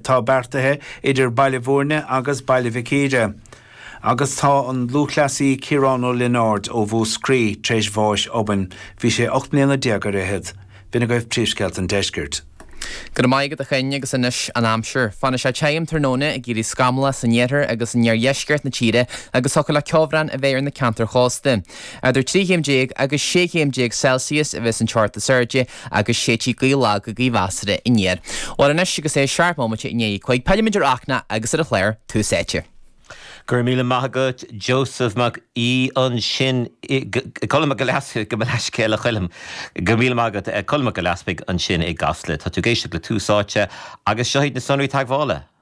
atá beartaithe idir Baile Bhúirne agus Baile Mhic Íre agus tá an lúthchleasaí Ciarán Ó Lionáird ó Mhúscraí tar éis bháis obann, bhí sé ocht mbliana déag ar fhichead. B'in agaibh príomhscéalta an deiscirt. Go raibh maith agat, a Choinn, agus anois an aimsir. Fanfaidh sé tirim tráthnóna, ag éirí scamallach san iarthar agus in iardheisceart na tíre agus thiocfadh le ceobhrán a bheith ar na ceantair chósta. Eadar trí chéim déag agus sé chéim déag Celsius a bheas an teocht is airde agus séidfidh gaoth lag go gaoth mheasartha aniar. Bhuel anois, agus é seacht mbomaite i ndiaidh a cúig, pillimid ar Fhachtna agus ar an chlár Tús Áite. Go raibh míle maith agat, Joseph Mac Aoidh ansin i, Colm Mac Giolla Easpaig, gabh mo leithscéal a Choilm, go míle maith agat, Colm Mac Giolla Easpaig ansin i gCasla. Tá tú ag éisteacht le Tús Áite agus seo iad na sonraí teagmhála.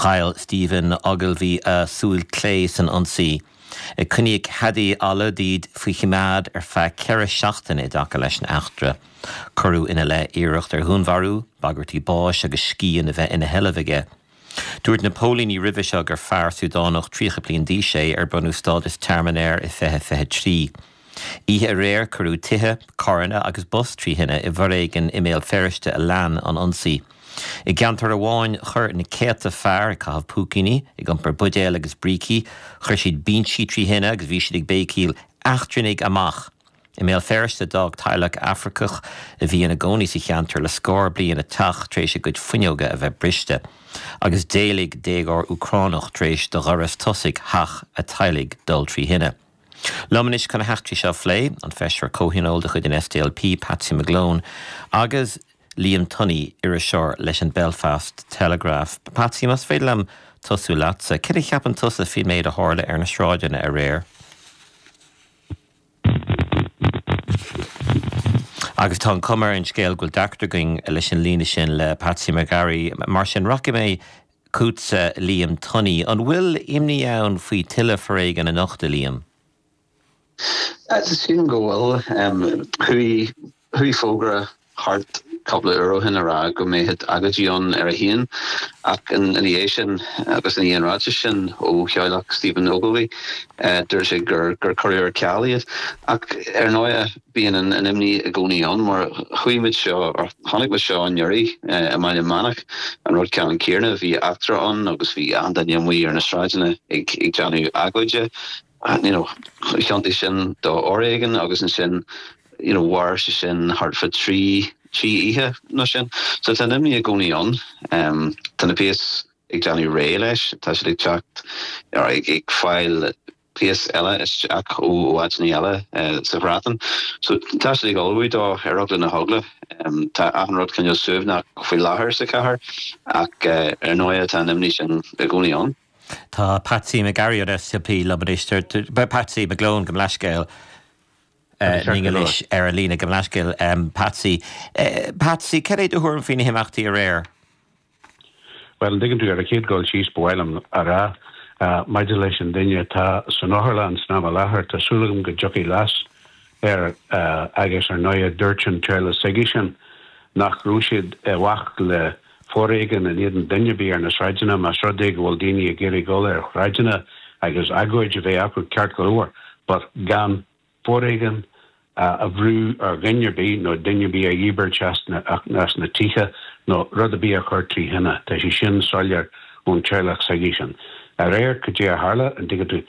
Chaill Stephen Ogilvie a súil clé san ionsaí. Coinníodh Hadi Alodid faoi choimeád ar feadh ceithre seachtaine i dtaca leis an eachtra. Cuireadh ina leith iarracht ar dhúnmharú, bagairtí báis agus scian a bheith ina sheilbh aige. Dúirt na póilíní roimhe seo gur fear Súdánach 30 bliain d'aois é ar bronnadh stádas tearmainn air i 2023. Oíche aréir cuireadh tithe, carranna agus bus trí thine i bhforéigean i mBéal Feirste a lean an ionsaí. I gceantar amháin chuir na céadta fear ag caitheamh púicíní, ag iompar buidéal agus brící, chuir siad binsí trí thine agus bhí siad ag béicíl 'Eachtrannaigh amach! I mBéal Feirste d'fhág teaghlach Afracach a bhí ina gcónaí sa cheantar le scór bliain a teach tar éis a gcuid fuinneoga a bheith briste agus d'éalaigh déagóir Úcránach tar éis do dhoras tosaigh theach a teaghlaigh dul trí thine. Liom anois chun na heachtraí seo a phlé, an Feisire Comhthionóil de chuid an SDLP, Patsy McGlone, agus Liam Tunney, iriseoir leis an Belfast Telegraph. Patsy, más féidir liom tosú leatsa, cad a cheapann tusa faoin méid a tharla ar na sráideanna aréir? Agus tá an chuma ar an scéal go bhfuil deacracht againn leis an líne sin le Patsy McGarry. Mar sin, rachaidh mé chugatsa, Liam Tunney. An bhfuil imní ann faoi tuilleadh foréigin anocht, a Liam? Sílim go bhfuil. Chuaigh fógra thart cupla uair ó shin a rá go mbeadh agóidí ann ar a haon ach ina dhiaidh sin agus ina dhiaidh an ráitis sin ó theaghlach Stephen Ogilvie dúirt sé gur cuireadh ar ceal iad. Ach ar ndóigh. Bíonn an imní i gcónaí ann, mar chuaigh muid seo, or chonaic muid seo anuraidh, i mBaile Meánach, an rud ceannann céarna, bhí eachtra ann agus bhí achan duine amuigh ar na sráideanna ag déanamh agóide, you know, thiontaigh sin do fhoréigean agus ansin, you know, mhair sé sin thart fá trí, trí oíche nó sin. So tá an imní i gcónaí ann. Tá na péas ag déanamh réidh leis, tá siad ag teacht, or ag fáil, Gléas eile isteach ó áiteanna eile sa Bhreatain. So, tá siad ag ullmhú dó ar eagla na heagla. Tá achan rud cineál suaimhneach faoi láthair sa chathair ach ar ndóighe tá an imní sin i gcónaí ann. Tá Patsy McGarry ón SDLP liom anois. Patsy McGlone gabh mo leithscéal linn anois ar an líne. Gabh mo leithscéal Patsy. Patsy, cad é do thuairim faoi na himeachtaí aréir? Bhuel, an dtuigeann tú, ar a chéad dul síos, ba mhaith liom a rá, maidir leis an duine atá san otharlann san am i láthair, tá súil agam go dtiocfaidh biseach air, agus ar ndóighe, dúirt an teaghlach s'aigesean nach raibh siad i bhfách le foréigean in éadan duine ar bith ar na sráideanna, más rud é go bhfuil daoine ag iarraidh dul ar shráideanna agus agóid a bheith acu, ceart go leor, but gan foréigean a bhrú ar dhuine ar bith nó duine ar bith a dhíbirt as na tithe nó rud ar bith a chur trí thine. Tá sé sin soiléir ón teaghlach s'aigesean. Aréir, cad é a tharla, an dtuigeann tú?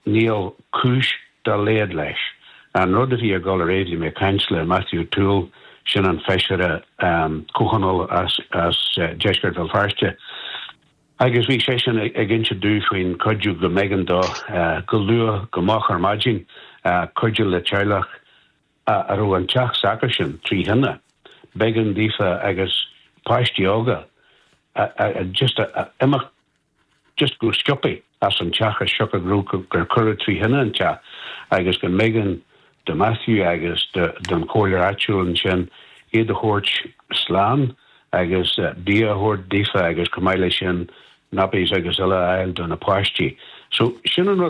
Níl cúis dá laghad leis. An rud a bhí ag dul aréir, bhí mé ag caint le Matthew O'Toole, sin an feisire comhthionóil as deisceart Bhéal Feirste, Agus bhí seisean ag inse domh faoin chuidiú go mb'éigean dó go luath go moch ar maidin cuidiú le teaghlach a raibh an teach s'acu sin trí thine, b'éigean daofa agus páistí óga just imeacht just go sciobtha as an teach as siocair gur cuireadh trí thine an teach agus go mb'éigean do Matthew agus don chomhairleoir áitiúil ansin iad a thabhairt slán agus bia a thabhairt daofa agus chomh maith leis sin 'nappies' agus uile a fháil do na páistí. So, sin an rud.